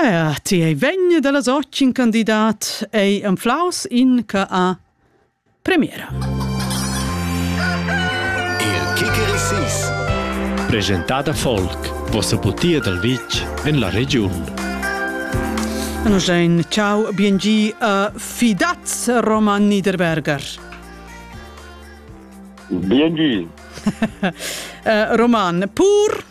Ah, ti ei vegni dallas otg in candidat ei anflaus in che ha premiera. Il Kicker Sis presentada Folk, vossa butia dal vitg en la regiun. Anogein, ciao, biengi a Fidaz Roman Niederberger. Biengi. uh, Roman, pur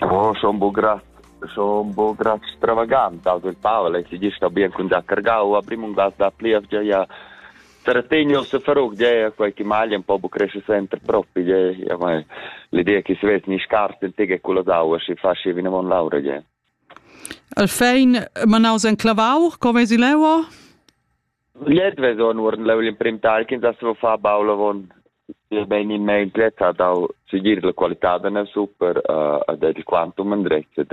Oh, schon bo grat, schon bo grat stravagant, also il Pavel è si gista bien con da cargau, a primum da da plievgia ja Sarategno se farug ja quei che male un po' bu cresce sempre proprio ja ma l'idea che si vede ni scarta in tega con la daua si fa si viene von laura ja Al fein manaus en clavau, come si leua? Gliez veson uorden leu l'emprim tagl ch'ins ha saviu far baul avon. Bein il meglio ha dau segir la qualitad da nus super ed ed il quantum endretg ed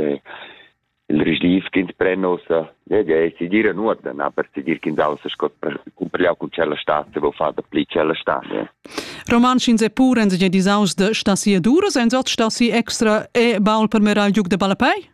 il risdiv ch'ins pren ussa. Gliez ei segir en uorden, aber segir ch'ins ha ussa sco cumpigliau cun tschella stad saviu far dapli tschella stad. Romantsch ins è pur, ins è disaus de star si e duras, ins ot star si extra e baul per mirar il giug de ballapei?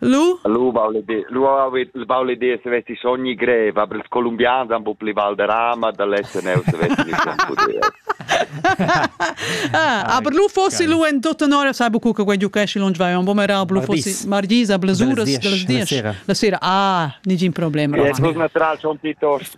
Lu? Lu vau leder, lu hau il vau leder se vessi sogni grev, aber ils colombians han bu pli val de rama da lessen eu se vessi ni schon puder. Ah, aber lu fossi lu en tutta nora sabu cu che quei giucesci lunch vai un bomerablu fossi margisa blessuras della dies la sera ah nigin problem Yes, was natural schon Titos.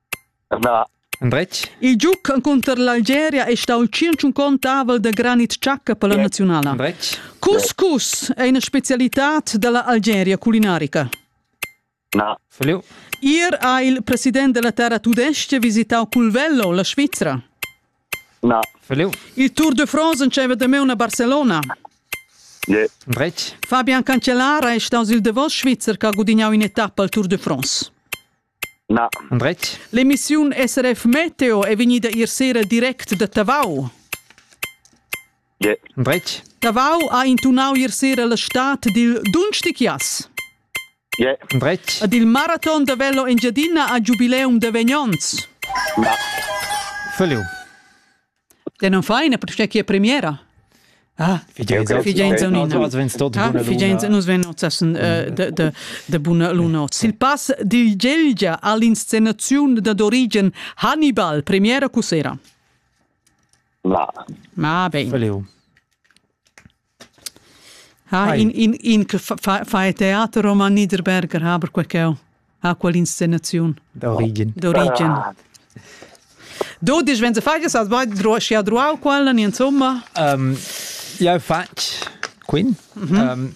Endretg. Il giug encunter l'Algeria è stà il tschintschunquont avel da granit tschacca per la naziunala. Endretg. Couscous è ina spezialitad da la Algeria culinarica. Na. Feliu. Ier ha il president della terra tudestga visitau Culvello, la Svizra. Na. Feliu. Il Tour de France enceva da me una Barcelona. Yeah. Endretg. Fabian Cancellara è stato il davos Svizzer che ha gudignato un'etappa al Tour de France. Na. Andretg. L'emissiun SRF Meteo è vegnida ier sera direct da Tavau. Yeah. Andretg. Tavau ha intunau ier sera la stad dil Dunstichias. Yeah. Andretg. Ed il maraton da velo Engiadina ha giubileum da vegnonts. Na. Völliu. Te non fai ne perché chi è premiera? Ah, figenza nus ven nozzesen de buna lunot. Sil pass dil Gelgia all'inscenaziun da d'origen Hannibal, premiera cu sera? La. Ma ah, bene. Ha, in, in, in che fa, fa, fa il teater roman Niederberger, ha per quel ch'eu ha quell'inscenaziun. D'origin. D'origin. Ah. Du dici, wenn du fagst, hast du schi adruau quella, insomma? Um, eu fatg quin. Mm -hmm. um,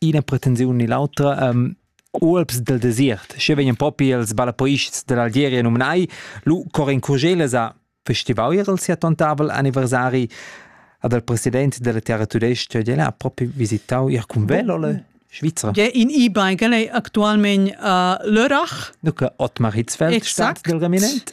ina pretensiun ni l'autra. Um, Ualps del desert, sche vegnan propi els balapoists dell'Algeria nomenai, lu Corin Curgeles ha festivau ier il sia tontavel anniversari ad el president della terra tudesca, el ha proprio visitau ier cun velo le Svizra. Ja, in e-bike è actualmente a uh, Lörrach. Dunque, Ottmar Hitzfeld, Stadt del Reminent.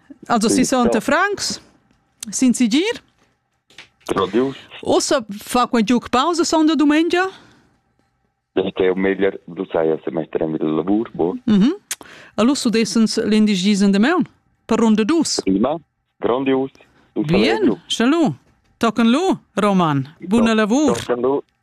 Also si sonte Franks, sin sigir. Radius. Ossa fa quel giuc pausa sonda domenica? Este un meglio dusai a semestre mit il lavor, bo. Mhm. Allora su desens l'indigisem de meun per ronda dus. Prima, grandios. Bien, chalu. Tocan lu, Roman. Buona lavor. Tocan lu.